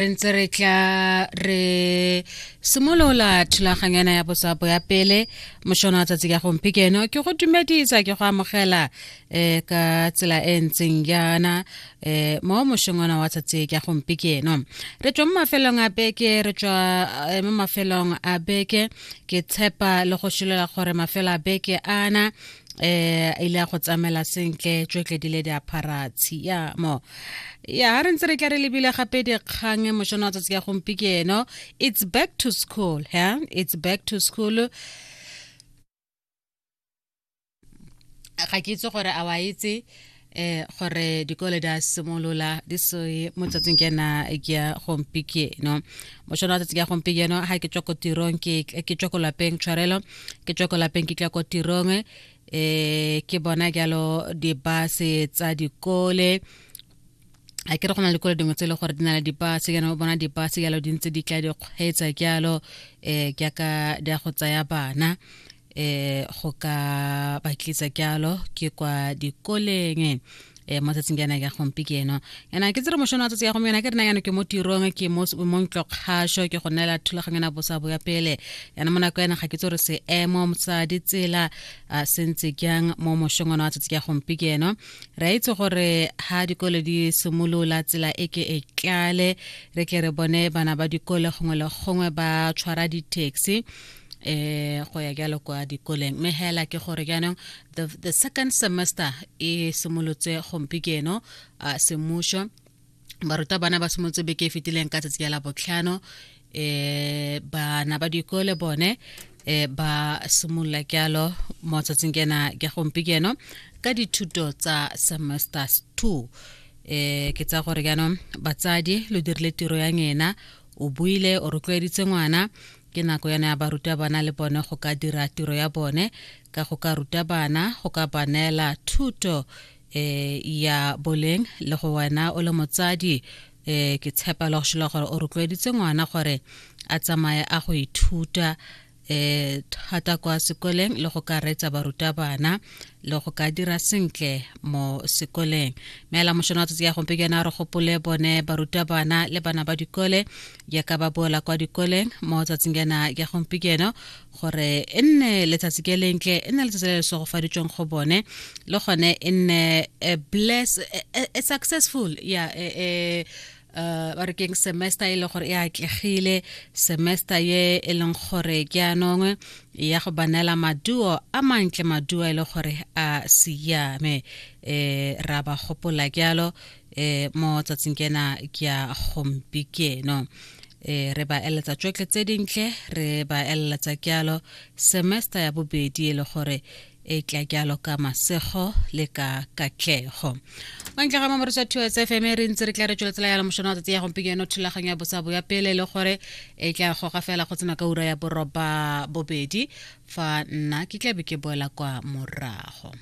re ntse re tla re simolola thulaganyana ya botsapo ya pele mošono wa tsatsi ka gomphikeno ke go dumedisa ke go amogela um ka tsela e ntseng yana um mo mošongwana wa tsatsi ka gomphikeno re tswa mo mafelong a beke re tswa eh, mo mafelong a beke ke tshepa le go šilela gore mafelo a beke ana um eh ile ya go tsamela sentle tšotle di le di aphara tshiamo ya ha re ntse re tla re lebile gape dikgang e mošono wa tsatsi ya gompieno it's back to school yeah? it's back to school ga ke itse gore a wa itse eh gore dikole di a simolola di se mo tsatsing ke na ke ya gompieno mo shona tsatsing ya gompieno ha ke tswa ko tirong ke ke tswa ko lapeng tshwarelo ke tswa ko lapeng ke tla ko tirong eh ke bona jalo di base tsa dikole a ke re go na le dikole dingwe tse e le gore di na le dibase kana o bona dibase jalo di ntse di tla di kgweetsa jalo um jaaka di ya go tsaya bana eh go ka ba tlisa kyalo ke kwa dikoleng eh mo tsatsing yana ya gompi ke eno yana ke tsere mošono wa tsatsi ya gompieno ke rena yana ke mo tirong ke mo mo ntlokgasho ke go nela thulaganyo na bosa bo ya pele yana mo nako yana ga ke tsore se emo motsa ditsela a sentse kyang mo mošono wa tsatsi ya gompi ke eno re itse gore ha dikole di simolola tsela e ke e tlale re ke re bone bana ba dikole gongwe le gongwe ba tshwara di-taxi eh go ya jalo kwa dikoleng mme hela ke gore jaanong the, the second semester e simolotse gompi keno uh, semušo baruta bana ba simolotse beke e fetileng ka tsatsi ya la botlhano eh bana ba dikole bone eh ba simolola jalo mo tsatsing kena ke gompi keno ka dithuto tsa semester 2 eh ke tsa gore jaanong batsadi lo dirile tiro ya ngena o buile o rotloeditse ngwana ke nako yana ya barutabana le bone go ka dira tiro ya bone ka go ka ruta bana go ka ba neela thuto um ya boleng le go wena o le motsadi um ke tshepa le go šola gore o rotloeditse ngwana gore a tsamaye a go ithuta um thata kwa sekoleng le go ka reetsa barutabana le go ka dira sentle mo sekoleng meela mošono wa tsatsi ya gompe ke yone a re gopole bone barutabana le bana ba dikole ya ka ba boela kwa dikoleng mo tsatsing yana ya gompikeno gore e nne letsatsi ke lentle e nne letsatsi le le segofaditsweng go bone le gone e nne a bless a successful ya yeah, uh, ba re keng semester e leng gore e atlegile semester ye e leng gore ke anongwe ya go banela maduo a mantle maduo e le gore a siame um ra ba gopola jalo eh mo tsatsing kena ke ya gompikeno eh re ba eletsa tšotle tse dintle re ba eletsa kyalo semester ya bobedi e le gore e tla kyalo ka masego le ka katlego wa ntle ga mamoriso ya thuo sfm re ntse re tla re tsweletsela yalo mošono wa tsatsi ya gompikeno thulaganyo ya bosabo ya pele e le gore e tla goga fela go tsena ka ura ya boroba bobedi fa nna ke tlabe ke boela kwa morago